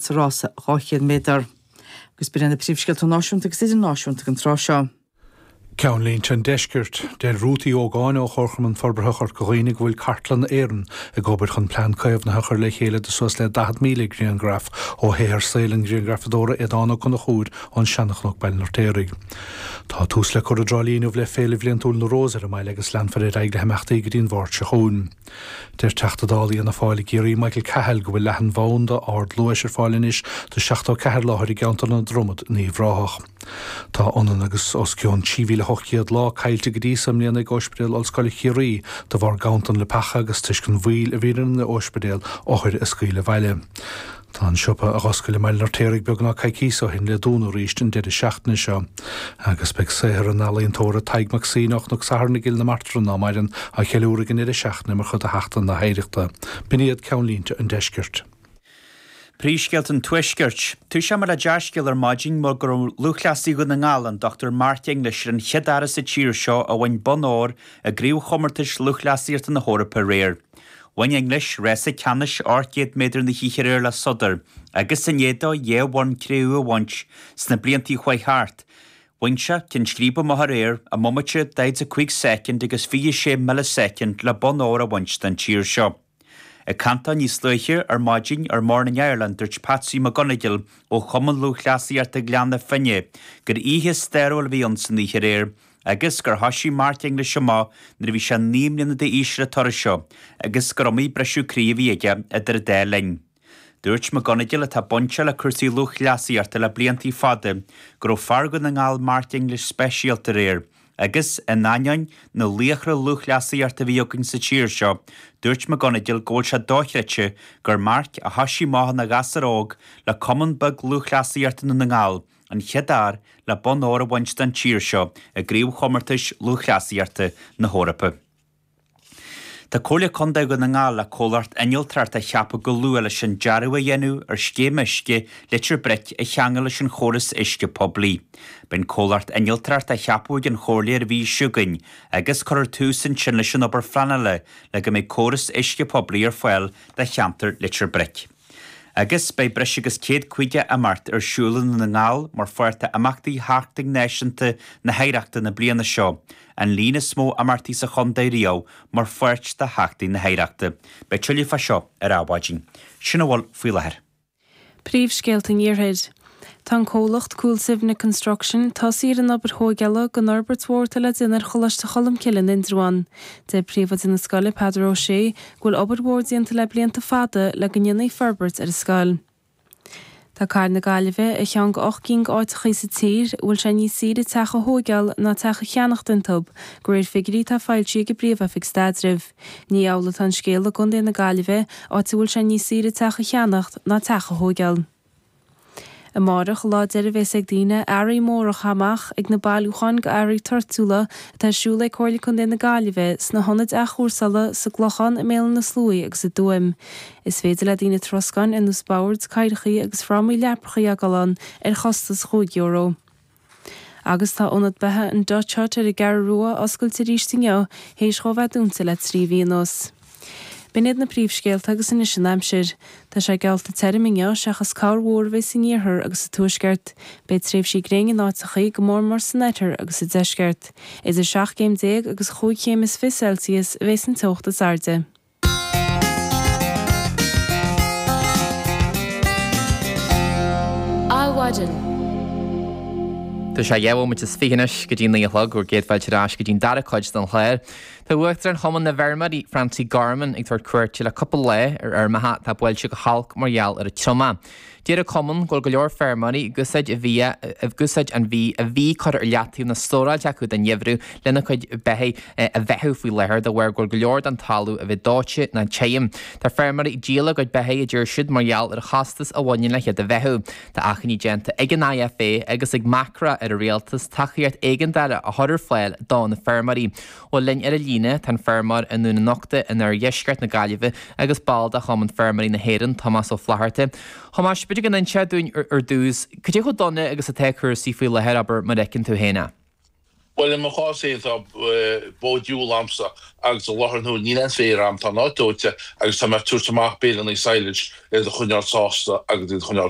sa rása 200 méadar. Agus ba iad na príomhscéalta náisiúnta agus idirnáisiúnta ag an tráth seo. Ceannlínte an Deiscirt, Deir Ruth Uí Ógáin ó Chomharchumann Forbartha Chorca Dhuibhne go bhfuil Cartlann na hÉireann ag obair chun plean caomhnaithe a chur le chéile do suas le 40,000 grianghraf ó shaothar saoil an ghrianghrafadóra Aodhán Ó Conchúir ón Seanchnoc Baile an Fheirtéaraigh Tá tús le cur i dTrá Lí inniu le Féile Bhliantúil na Rós ar an mbaile agus leanfar ar aghaidh le himeachtaí go dtí an Mháirt seo chugainn. Deir Teachta Dála Fhianna Fáil i gCiarraí Michael Cahill go bhfuil leathanbhanda ardluais ar fáil anois do 74 láthair i gceantar na Dromad in Uíbh Ráthach. Tá ionann agus os cionn 3,800 lá caillte go dtí seo i mbliana ag Ospidéal Ollscoile Chiarraí de bharr ganntan leapacha agus toisc an mhoill a bhí ar an ospidéal othair a scaoileadh abhaile. Tá an siopa a dh'oscail i mBaile an Fheirtéaraigh beagnach coicíos ó shin le dúnadh arís an deireadh seachtaine seo. Agus beidh saothar an ealaíontóra Tadhg Mac Suibhne ó Chnoc Satharn i gCill na Martra in Áth Mairin á cheiliúradh ag an ndeireadh seachtaine mar chuid de Sheachtain na hOidhreachta. B'in iad ceannlínte an deiscirt. Príomhscéalta an tuaiscirt. Dhúisíomar le dea-scéal ar maidin mar go raibh lúthchleasaí Dhún na nGall, an Dr Mark English, ar an chéad fhear as an tír seo a bhain bonn óir i gCraobhchomórtais Lúthchleasaíochta na hEorpa aréir. Bhain English rása ceannais ocht gcéad méadar na hoíche aréir le sodar agus i ndiaidh dó dhá bhonn cré-umha a bhaint sna blianta chuaigh thart. Bhain sé ceann scríbe amach aréir i mbomaite 45 soicind agus 26 milleasoicind le bonn óir a bhaint den tír seo. Ag caint dó níos luaithe ar maidin ar Morning Ireland dúirt Patsy McGonagle ó Chumann Lúthchleasaíochta Ghleann na Finne gur oíche stairiúil a bhí ann san oíche aréir agus gur thoisigh Mark English amach nuair a bhí sé naoi mbliana d'aois ar an turas seo agus gur iomaí briseadh croí a bhí aige idir an dá linn. Dúirt McGonagle, atá bainteach le cúrsaí lúthchleasaíochta le blianta fada, go raibh fear Dhún na nGall Mark English speisialta aréir agus, in ainneoin na laochra lúthchleasaíochta a bhí againn sa tír seo, dúirt McGonagle go bhfuil sé dochreidte gur Mark, a thoisigh amach ina ghasúr óg le cumann beag lúthchleasaíochta Dhún na nGall, An chéad fhear le bonn óir a bhaint den tír seo i gCraobhchomórtais Lúthchleasaíochta na hEorpa. Tá Comhairle Contae Dhún na nGall le comhlacht innealtóireachta a cheapadh go luath leis an dearadh a dhéanamh ar scéim uisce Leitir Bric a cheangal leis an chóras uisce poiblí. Beidh an comhlacht innealtóireachta á cheapadh ag an Chomhairle ar an mhí seo chugainn agus cuirfear tús ansin leis an obair phleanála le go mbeidh córas uisce poiblí ar fáil do cheantar Leitir Bric. Agus beidh breis agus céad caoga imeacht ar siúl i nDún na nGall mar pháirt de imeachtaí Sheachtain Náisiúnta na hOidhreachta na bliana seo, an líon is mó imeachtaí sa chontae riamh mar pháirt de Sheachtain na hOidhreachta. Beidh tuilleadh fá seo ar ball. Sin a bhfuil faoi láthair. Príomhscéalta an Iarthair. Tá an comhlacht Coolsivna Construction tosaithe ar an obair thóigeála don fhorbairt mhór atá le déanamh ar Choláiste Cholmcille in Indreabhán. Deir Príomhoide na scoile, Peadar Ó Sé, go bhfuil obair mhór déanta le blianta fada le go ndéanfaí forbairt ar an scoil. Tá cathair na Gaillimhe ar cheann go ocht gcinn d'áiteachaí sa tír a bhfuil sé níos saoire teach a thóigeáil ná teach a cheannacht iontub, go réir figiuirí atá foilsithe ag an bPríomh-Oifig Staidrimh. Ní amhlaidh atá an scéal i gContae na Gaillimhe, áit a bhfuil sé níos saoire teach a cheannacht ná teach a thóigeáil. Amáireach an lá deiridh a bhéas ag daoine earraí móra a chaith amach ag na bailiúcháin go earraí toirtiúla atá ar siúl ag Comhairle Contae na Gaillimhe sna hionaid athchúrsála sa gClochán, i mBéal Átha na Sluaighe agus i dTuaim. Is féidir le daoine troscáin ar nós boird, cathaoireachaí agus frámaí leaprachaí a fhágáil ann ar chostas chúig euro. Agus tá Ionad Beatha an Dutch Hut ar an gCeathrú Rua oscailte arís inniu théis dhó bheith dúnta le trí mhí anuas. B'in iad na príomhscéalta agus anois an aimsir. Tá sé geallta tirim inniu, seachas corrmhúr a bheidh san iarthar agus sa tuaisceart. Beidh tréimhsí gréine in áiteachaí, go mór mór san oirthear agus sa deisceart. Idir seacht gcéim déag agus chúig chéim is fiche Celsius a bheas an teocht is airde. Adhmhaidin. Tá sé dhá bhomaite is fiche anois go dtí naoi a chlog, bhur gcéad fáilte ar ais go dtí an dara cuid den chlár. Tá Uachtarán Chumann na bhFeirmeoirí, Francie Gorman, ag tabhairt cuairte le cúpla lá ar fheirmeacha atá buailte go holc mar gheall ar an triomach. Deir an Cumann go bhfuil go leor feirmeoirí ag úsáid an bhia ag úsáid an bhídh a bhí curtha ar leataobh nó stóráilte acu don gheimhreadh lena cuid beithigh a bheathú faoi láthair de bharr go bhfuil go leor den talamh a bheith dóite nó tirim. Tá feirmeoirí ag díol a gcuid beithigh a deir siad mar gheall ar an chostas a bhaineann le hiad a bheathú. Tá achainí déanta ag an IFA agus ag Macra ar an Rialtas tacaíocht éigeandála a chur ar fáil do na feirmeoirí. Bhuel linn ar a líne, tá an feirmeoir i nDún an Uchta in oirdheisceart na Gaillimhe agus ball de Chumann Feirmeoirí na hÉireann, Tomás Ó Flatharta. Thomáis, b'fhéidir go n-inseofá dúinn ar dtús, cad é chomh dona agus atá cúrsaí faoi láthair, abair, mar a fheiceann tú féin é. Bhuel, i mo chás féin tá bó diúil agamsa agus i láthair na huaire níl aon féar agam, tá an áit dóite agus tá mé ag tabhairt amach béile na Silage iad a choinneáil sásta agus iad a choinneáil.